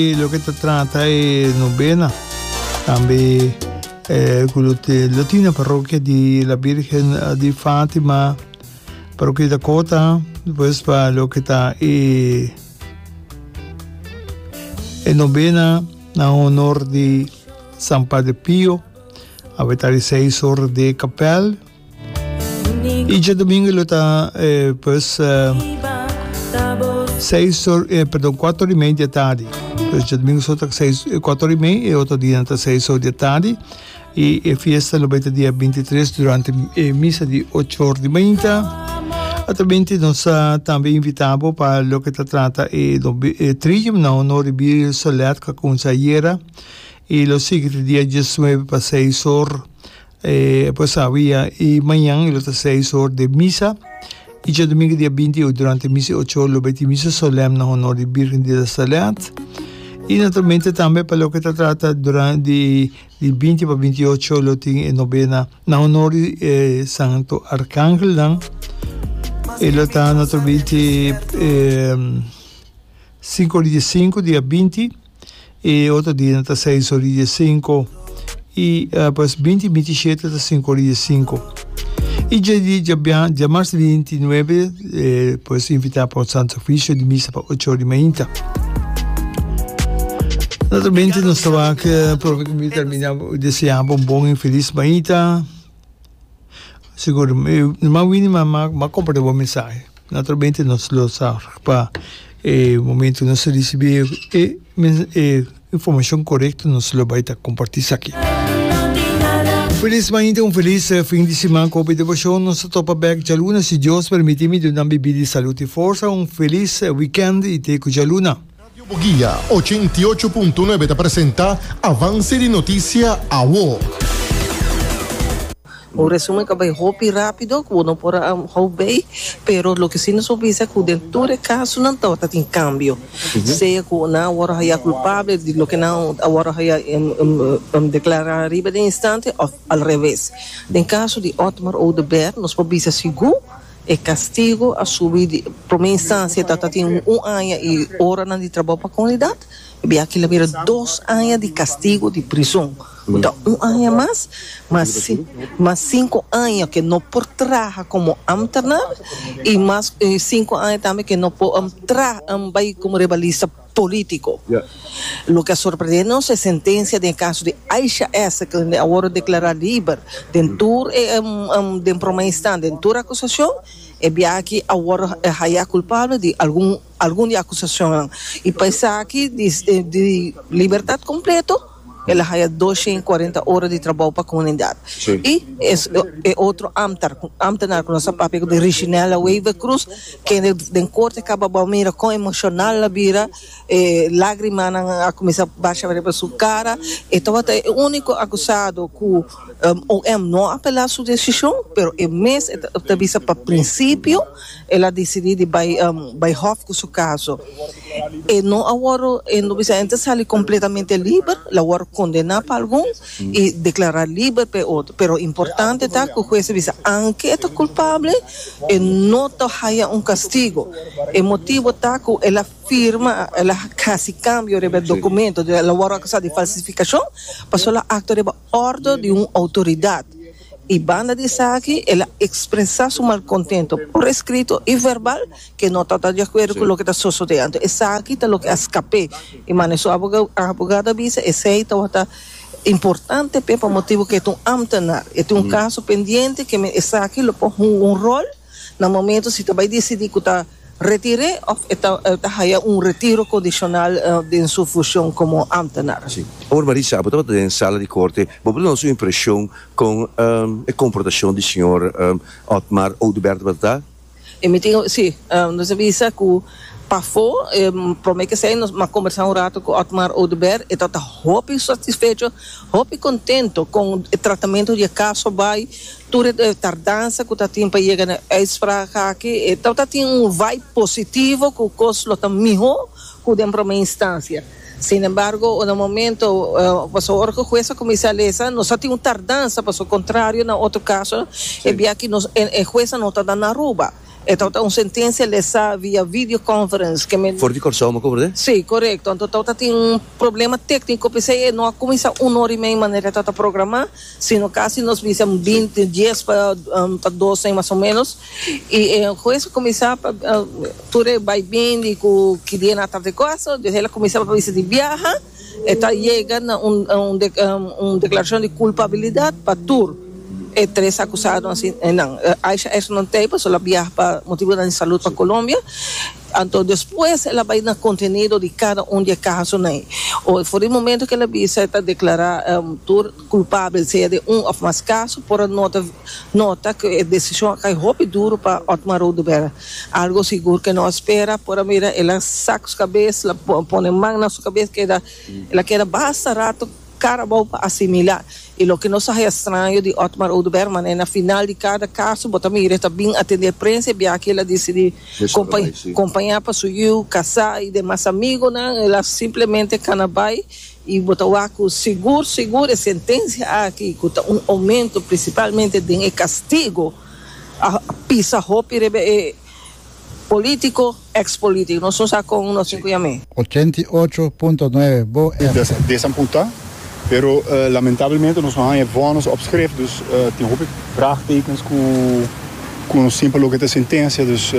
E loke ta trata e nobena tambe e ku lo te lo tin na parrokia di la Birgen di Fatima parrokia di Dakota pues pa loke ta e e nobena na honor di San Padre Pio a be ta di seis ora de kapèl Y dje domingo lo ta eh, pues eh, seis or, eh, perdón, cuatro hora y media de tarde. Pues dje domingo so ta seis, eh, cuatro hora y media, y otro día ta seis hora de tarde. Y eh, fiesta lo beta día 23 durante eh, misa de ocho hora de mañana. Atamente nos uh, también invitamos para lo que se trata eh, do, eh, Trium, no, no ribir Soledad, que con Sayera, y lo siguiente día 19 para 6 horas. E por sabi ya i mañan e lo ta seis or de misa i djadomingu dia binti i ocho durante misa i ocho or lo bai tin misa solèm na honor di Birgen di Nazaret i naturalmente tambe pa loke ta trata duran di di binti pa binti i ocho lo tin e nobena na honor di e santo arkangelnan i lo ta naturalmente sinku or di dia sinku dia binti. e otro dia ta seis ora y diez cinco, y pues binti y binti shete ta cinco ora y diez cinco. Y dje di dje biaha, dje marzo binti y nuebe, pues invita pa santo oficio di misa pa ocho ora y mainta. Naturalmente nos ta wak profe di termina deseando un bon y feliz mainta. Sigur, no a wini ma m'a comparti bo mensahe. Naturalmente nos lo sa pa e momento nos a ricibi e informacion corecto nos lo bay ta comparti esaki. Feliz mañana, un feliz fin di siman cu hopi diversión. Nos ta topa bek djaluna si Dios permiti. Mi Diosnan bibí di salud y forsa. Un feliz weekend y te cu djaluna. Radio Bugia ochenta i ocho punto nuebe ta presenta Avance di Noticia Awo. Un resumen ta bay hopi rapido cu bo no por a hou bay, pero loke si nos por bisa cu den tur e casonan tabata tin cambio, sea cu nan a worde haya culpabel di loke nan a worde haya declara ariba den instante of al reves. Den caso di Otmar Oduber nos por bisa sigur E castigo a subi di prome instancia ta ta tin un aña y horanan di trabou pa comunidad, bia aki la bira dos aña di castigo di prizon, cu ta un aña mas, mas si, mas cinco aña ke no por traha como ambtenaar y mas cinco aña tambe ke no por traha, bai como rebalista. político. Loke a sorprendé nos e sentencia den e caso di Aisha S. kende a wòrdu deklará liber den tur den promé instan den tur acusacion, e biahachi a wòrdu hayá culpabel di algun algun di acusacionnan i pa esaki di libertad completo. El a haya dos shen i kuarenta ora di trabou pa komunidat. I e otro amtar, amtenar ku nos a papia ku di Richinella Wever Cruz, kende den korte a kaba bou mira kon emoshonal a bira, e lagrimanan a kuminsá basha riba su kara. E tabata e úniko akusado ku OM no a apelá su desishon, pero e mes ta bisa pa prinsipio. El a decidí di bai bai hòf ku su kaso. E no a wòrdu, e lo bisa e ta sali kompletamente liber, el a wòrdu kondená pa algun i deklará liber pa e otro. Pero importante ta ku hues a bisa aunke e ta kulpabel, e no ta haya un kastigu. E motibu ta ku el a firma, el a hasi kambio riba e dokumento, el a wòrdu akusá di falsifikashon pasobra el a aktua riba òrdu di un outoridat. i banda di esaki el a ekspresá su malkontento por eskrito i verbal ke no ta di akuerdo ku loke ta sosodé. Anto esaki ta loke a skap'é i mane su abogado a bisa esei tabata importante p'e pa motibu ke e ta un ámtenar, e tin un kaso pendiente ke men esaki lo por hunga un ròl. na momento si ta bai disidí ku ta retir'é òf e ta e ta haya un retiro kondishonal den su fushon komo ámtenar. Sí. Ora Marisa bo tabata den sala di korte, bo por duna su impreshon kon e komportashon di señor Otmar Oduber tabata ta? E mi tin, sí, nos a bisa ku pafó e promé k'esei nos a kombersá un rato ku Otmar Oduber, e tabata hopi satisfecho, hopi kontento kon e tratamentu di e kaso bai, Tur e tardansa ku ta tin pa yega na e uitspraak aki e tabata tin un vibe positivo ku kos lo ta mihó ku den promé instansia. Sin embargo unda momento paso ora ku hues a kuminsá lesa nos a tin un tardansa paso kontrario na otro kaso e bia aki nos e huesnan no ta nan Aruba e tabata un sentensia lesá via video conference ke men For di Kòrsou me kubru den? Si, korekto. Anto tabata tin un problema tékniko p'esei e no a kuminsá un ora i mei manera e tabata programá. Si no kasi nos bisa un binti, dies pa pa dos ein mas o menos, i e hues a kuminsá pa tur e bai bini ku ki dia nan a tarde kos, dios el a kuminsá pa bisa di biaha, e ta yega na un un deklarashon di kulpabilidat pa tur e tres akusado ansi nan. Aisha Esther no ta ei pasobra el a biaha pa motibunan di salud pa Colombia, anto despues el a bai na kontenido di kada un di e kasonan ei. For di momento ku el a bisa e ta deklará tur. culpabel sea den un of mas caso por a nota nota cu e decision a cay hopi duro pa Otmar Oduber. Algo sigur que no a spera por a mira el a saca su cabes la pone man na su cabes keda el a keda basta rato Carabao pa asimila y loke nos a haya straño di Otmar Oduber manera na final di cada caso bo ta mira el ta bin atender prensa y biachi el a dicidi compaña pa su yiu casa y demas amigonan el a simplemente cana bay Y bo ta wak cu sigur sigur e sentencia aki, cu ta un aumento principalmente den e castigo, a pisa hopi riba e politico, ex politico. Nos no sa con nos tin cu yam'e. Ochenta i ocho punto nueve bo F. Desamputa, pero lamentablemente nos no haña e vonnis op skrif, dus tin hopi vraagtekens cu cu nos tin pa loke ta sentencia, dus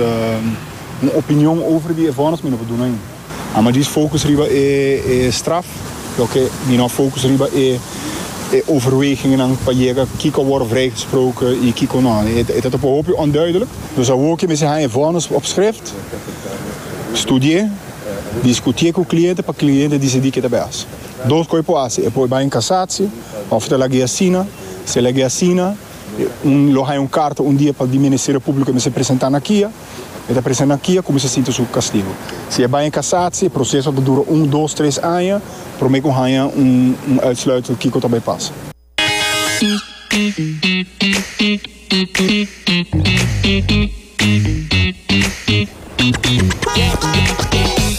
un opinion over di e vonnis mi no por duna ain. Amo djis focus riba e straf, loke mi no a focus riba e overwegingennan pa yega kiko a worde vrijgesproke y kiko no. E ta topo hopi onduidelijk. Dus awor ke mester haña e vonnis op schrift, studié, discutié cu cliente pa cliente decidi ke ta bay haci. Dos cos e por haci, e por bay in casatie of ta lag'e asina, si a lag'e asina, un lo haña un carta un dia pa di Ministerio Publico mester presenta na kia. E ta presa na kia kuminsá sinti su kastigu. Si e bai na kasatsi, e proseso ta dura un, dos, tres aña promé ku haña un uitsluitsel kiko ta bai pasa.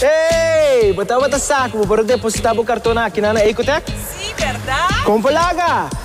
Hey! Bo tabata sa ku bo por a depositá bo karton akinan na Ecotech? Sí, bèrdat! Kon pa laga?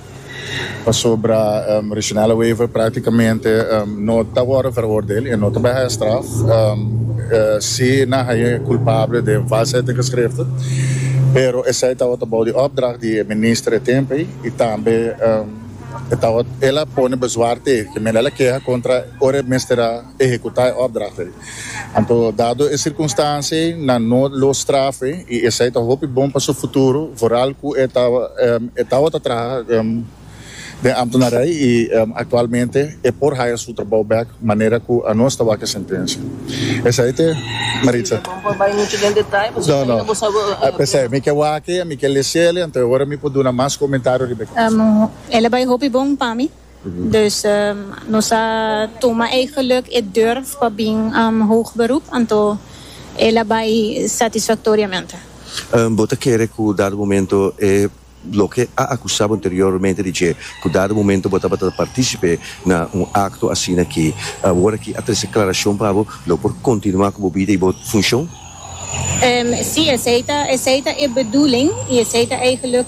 Pasobra Reginella Wever práktikamente no ta wòrdu veroordeel, e no ta bai haya straf, sí nan haya e kulpabel den valsheid den geschrifte, pero esei tabata bou di òpdracht di e minister e tempu ei i tambe e tabata el a pone bezwaar te, ke men el a keha kontra ora e mester a. ehekutá e òpdracht ei. Anto, dado e sirkunstansia ei, nan no lo straf ei i esei ta hopi bon pa su futuro, vooral ku e ta e tabata traha den ámtenarij i aktualmente e por haya su trabou bèk manera ku anos ta wak e sentensia. Esei te, Maritza. No, no. P'esei mi ke wak e, mi ke lesiel e, anto e ora mi por duna mas komentario riba e kos. El a bai hopi bon pa mi. Dus nos a tuma e geluk, e durf pa bin hoog beroep, anto el a bai satisfactoriamente. Bo ta kere cu dado momento e loke a acusa bo anteriormente di dje, cu dado momento bo tabata ta participe na un acto asina aki, awor aki a trece aclaracion pa bo, lo por continua cu bo bida y bo funcion? Si, esey ta e bedoeling y esey ta e geluk.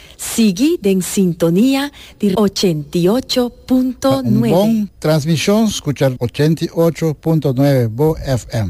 Sigui den sintonia di ochenta i ocho punto Ta un bon nuebe. transmishon skucha ochenta i ocho punto nuebe Bo FM.